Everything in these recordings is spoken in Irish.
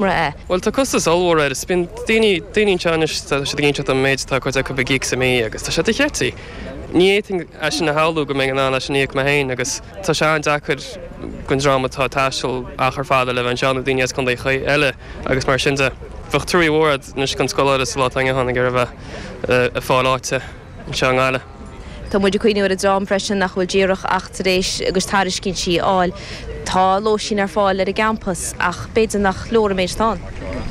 mra é. Bhuel, tá costas ollmhór air. Bíonn daoine, daoine anseo anois, tá siad ag inseacht dom an méid atá ag cuid acu ag íoc sa mí agus tá sé dochreidte. Ní fhéadfainn é sin a shamhlú go mbeinn in ann é sin a íoc mé féin agus tá sé an-deacair don dream atá ag taisteal achar fada le bheith anseo, nó daoine as contaetha eile agus mar sin de. Bheadh truaí mhór agat anois don scoláire sa lá atá inniu ann ag iarraidh a bheith ag fáil áite. anseo i nGaillimh. Tá muid ag cuimhneamh ar an dream freisin nach bhfuil díreach ach tar éis a gcuid tairiscintí a fháil. Tá lóistín ar fáil ar an gcampas ach b'fhéidir nach leor an méid atá ann.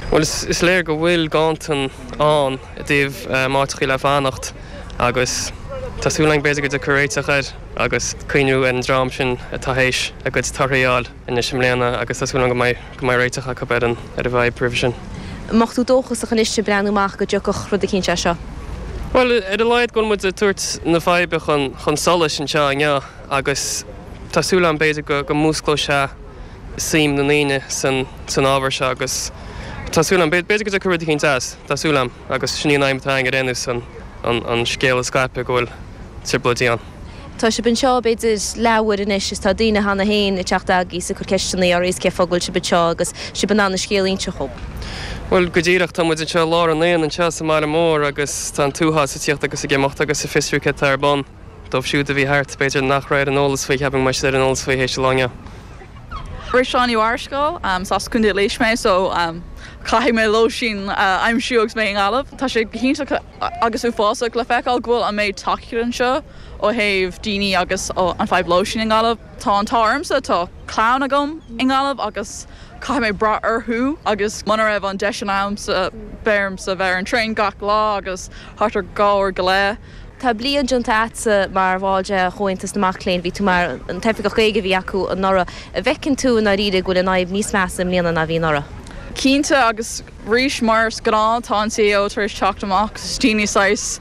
Bhuel, is léir go bhfuil ganntan ann i dtaobh áiteachaí le fanacht agus tá súil againn b'fhéidir go dtiocfar ar réiteach air agus cuimhniú ar an dream sin atá théis a gcuid torthaí a fháil. anois i mbliana agus tá súil agam go mbeidh réiteach acu ar an bhfadhb roimhe sin. An mbeadh tú dóchasach anois ag breathnú amach go dtiocfadh rud eicínt as seo? Bhuel, ar a laghad go bhfuil muid ag tabhairt na faidhbe chun solais anseo inniu agus tá súil agam b'fhéidir go músclóidh sé suim na ndaoine san ábhar seo agus tá súil agam, b'fhéidir go dtiocfaidh rud eicínt as, tá súil agam agus sin í an aidhm atá againn ar aon nós an scéal a scaipeadh go bhfuil trioblóidí ann. Tá sib anseo b'fhéidir leathuair anois is tá daoine cheana féin ag teacht agaibh ag cur ceisteannaí oraibh cé fáth go bhfuil sib anseo agus sib in ann an scéal a inse chugam. Bhuel, go díreach, tá muid anseo i lár an aonaigh anseo sa mbaile mór agus tá an t-uafás ag tíocht agus ag imeacht agus ag fiosrú cad tá ar bun. Dóibh siúd a bhí thart, b'fhéidir nach raibh ar an eolas faoi, cheapfainn go mbeidh siad ar an eolas faoi théis an lae inniu. Is mise Seán Ó Marascáil, is as Contae Laois mé so caithfidh mé lóistín a aimsiú agus mé i nGaillimh. Tá sé go hiontach. agus uafásach, le feiceáil go bhfuil an méid tacaíocht anseo ó thaobh daoine agus ó an fadhb lóistín i nGaillimh. Tá an t-ádh ormsa, tá clann agam i nGaillimh agus caithfidh mé brath orthu agus muna raibh an deis sin agamsa bheadh ormsa bheith ar an traein gach lá agus thart ar dhá uair go leith. Tá bliain déanta agatsa mar bhall de Chomhaltas na Mac Léinn, bhí tú mar an t-oifigeach Gaeilge a bhí acu anuraidh. An bhfeiceann tú i ndáiríre go bhfuil an fhadhb níos measa i mbliana ná a bhí anuraidh? Cinnte agus Arís, mar is gnáth, tá an CAO tar éis teacht amach is daoine saghas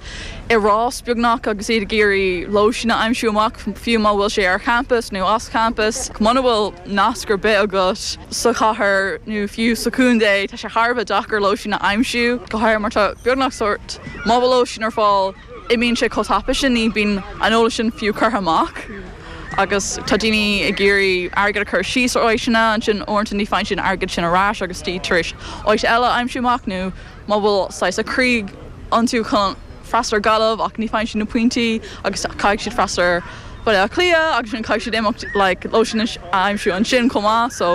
i rás, beagnach, agus iad ag iarraidh lóistín a aimsiú amach, fiú má bhfuil sé ar champas nó as champas. Muna bhfuil nasc ar bith agat sa chathair nó fiú sa chontae, tá sé thar a bheith deacair lóistín a aimsiú, go háirithe mar tá beagnach sórt, má bhfuil lóistín ar fáil, imíonn sé chomh tapa sin, ní bhíonn an eolas sin fiú curtha amach agus tá daoine ag iarraidh airgead a chur síos ar áiteanna, ansin uaireanta ní bhfaigheann siad an airgead sin ar ais agus iad tar éis áit eile a aimsiú amach nó má bhfuil saghas a gcroí iontu chun freastal ar Ghaillimh ach ní bhfaigheann siad na pointí agus caithfidh siad freastal ar Bhaile Átha Cliath agus ansin caithfidh siad imeacht like lóistín a aimsiú ansin chomh maith so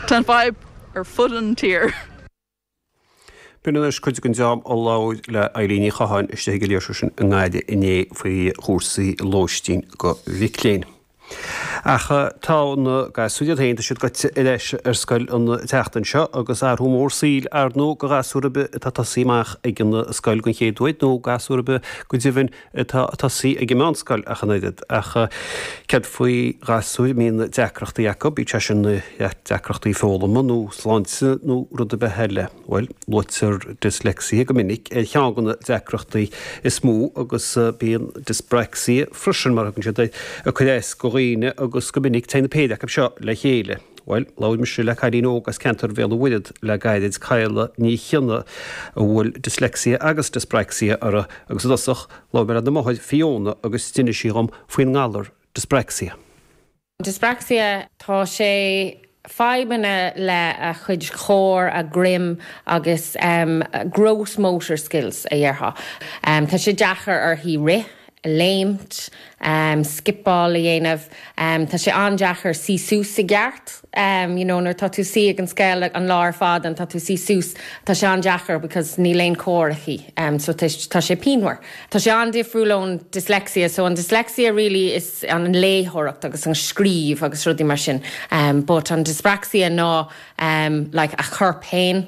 tá an fadhb ar fud an tír. B'in anois cuid den dream a labhair le Eileen Ní Chatháin istigh ag an léirsiú sin i nGaillimh inné faoi chúrsaí lóistín do mhic léinn. Ach tá na gasúir iad féin, tá siad gaibhte ar ais ar scoil an tseachtain seo agus athrú mór saoil, ar ndóigh, do ghasúr ar bith atá tosaithe amach ag an scoil den chéad uair, nó gasúr ar bith, go deimhin, atá tosaithe ag an meánscoil ach an oiread. Ach céard faoi ghasúir a mbíonn deacrachtaí acu, bíodh sé sin deacrachtaí foghlama nó sláinte nó rud ar bith eile? Bhuel, luaitear dyslexia go minic ar cheann de na deacrachtaí is mó agus bíonn dyspraxia freisin, mar thugann siad air, ag cur as do dhaoine agus go minic téann an péire acu seo le chéile. Bhuel, labhair mise le cailín óg as ceantar Bhéal an Mhuirthead le gairid, Cadhla Ní Chionnaith, a bhfuil dyslexia agus dyspraxia uirthi, agus i dtosach, labhair mé lena máthair, Fiona, agus d'inis sí dhom faoin ngalar dyspraxia. Dyspraxia, tá sé fadhbanna le a chuid core, a greim agus gross motor skills a déarfá. Tá sé deacair uirthi rith, léimt, scipeáil a dhéanamh, tá sé an-deacair suí suas i gceart, you know, nuair atá tú suí ag an scoil an lá ar fad and tá tú suí suas, tá sé an-deacair because níl aon core aici, so tá sé pianmhar. Tá sé an-difriúil ón dyslexia, so an dyslexia really is an léitheoireacht agus an scríobh agus rudaí mar sin but an dyspraxia ná like a chorp féin,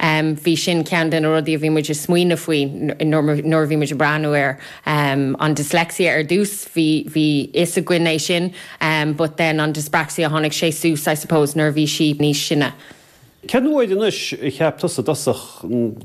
Bhí sin ceann de na rudaí a bhí muid a' smaoineamh faoi nuair a bhí muid a' breathnú ar an dyslexia ar dtús, bhí fhios againn é sin but then an dyspraxia tháinig sé suas I suppose nuair a bhí sí níos sine. Cén uair anois a cheap tusa i dtosach go.